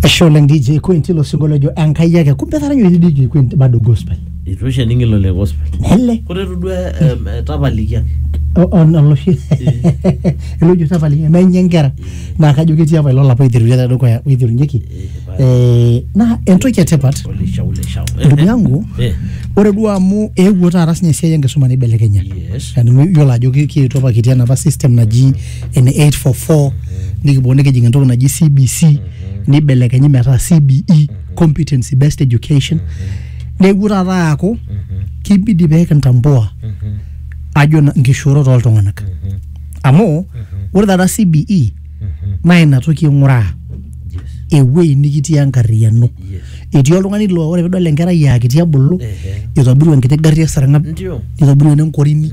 Ashe oleng DJ Queen tilo singo lojo Enkai ake. Kumbe etaranya oshi DJ Queen bado gospel. Itu oshi ening ilo le gospel. Ele Ore itu duo em, eh, tapaliki ake. o- on- oloshi elojo tapaliki menye nkera naa kajo ketii apa ilo lapa oiterutua te dukuya oiterunyeki Eh, naa entoki etipat Ole shau le shau. ndugu yangu Eh, ore duo amu eewuo taata sinye esiai enkisuma neibelekenya yes. Yani iyiolo ajo ki- kietuo apa kitii enapa system naji ene 844 nikiboo nikijing entoki naji cbc nibelekenyi metaa cbe competency based education neewuo taata aaku kibidi pee kintambua ajo na- nkishoorot oltung'anak amu ore taata cbe naa ina toki ing'uraa ewuei nikitii enkarriyiano etii oltung'ani laa ore pidol enkerai aa kiti ebulu Ehe. itobirua enkiti garri esarng'ab Ndio. nitobirua ene nkorini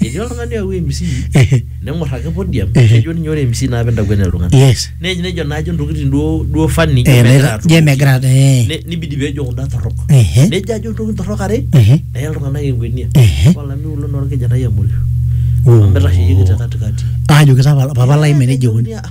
etii oltung'ani oyawua mc Ehe. neng'or ake podium Ehe. nejo ninye ore mc naa pintakuenia iltung'anak yes Ne- nejo naajo ntokitin duo duo fani Eh, megira megira- atumoki. je megira eh, Ne- nibidi pejo kunda torrok Ehe. nejo ajo ntokitin torrok are ehe, neya iltung'anak enkwenia Ehe. olameyu lo naa orkijanai amoyu Oh. amu itasheyieki te katikati ajoki sa papa lai meneja eikoni Nejoki, "Ah,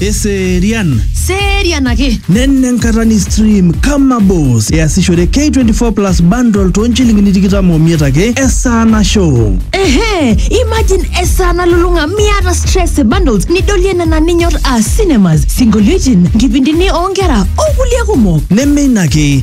Eserian. Serian ake. Nenne enkata ni stream kama boss. Easishore K24 Plus bundle too nchilingini tikitam omiet ake esaa nasho. Ehe, imagine esaa nalulung'a miata stress e bundles nidolie nena ninyor aa cinemas, sinkolioitin, nkipindini oonkera okulie kumok. Neme ina ake,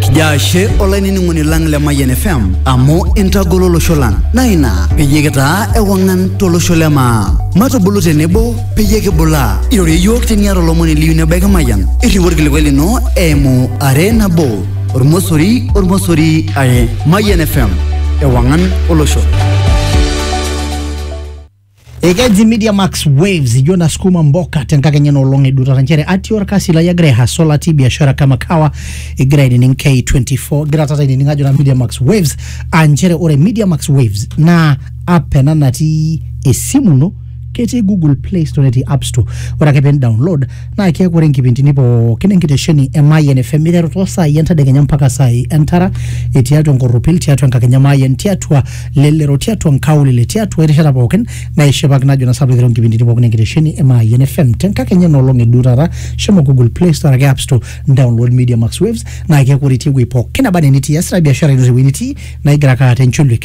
kijo ashe olainining'oni lang le Mayian FM amu intagolo olosho lang naa ina peyie kitaa ewang'an tolosho le maa matubulu tenebo peyie kibulaa irorie iyiook teniata olomoni liyu nebaiki Mayian irriu orkilikuai lino eimu are nabo ormosori ormosori are Mayian FM ewang'an olosho Ekeji Media Max Waves ijo nasukuma mboka tenkakenya nolong edutata nchere atii orkasi lai agira aihaso latii biashara kama kawa egira ainining K24 egira taata ainining ajo na Media Max Waves aa nchere ore Media Max Waves naa app ena natii esimu ino ketii Google Play Store netii App Store ore ake pin download naa keeku ore nkipindini pookin enkitesheni e Mayian FM iteru too saai entedekenya mpaka saai entara etii atua enkorropil tiatua enkakenya Mayian tiatua lelero tiatua nkaulele tiatua erishata pookin naishipaki najo na sababu iteru nkipindini pookin enkitesheni e Mayian FM tenkakenya enoolong e duo taata shomo Google Play Store ake App Store download Media Max Waves naa keeku ore itii ewuei pookin naba enaa enitii iasita biashara ino tewuei nitii naa igira ake aata encholiek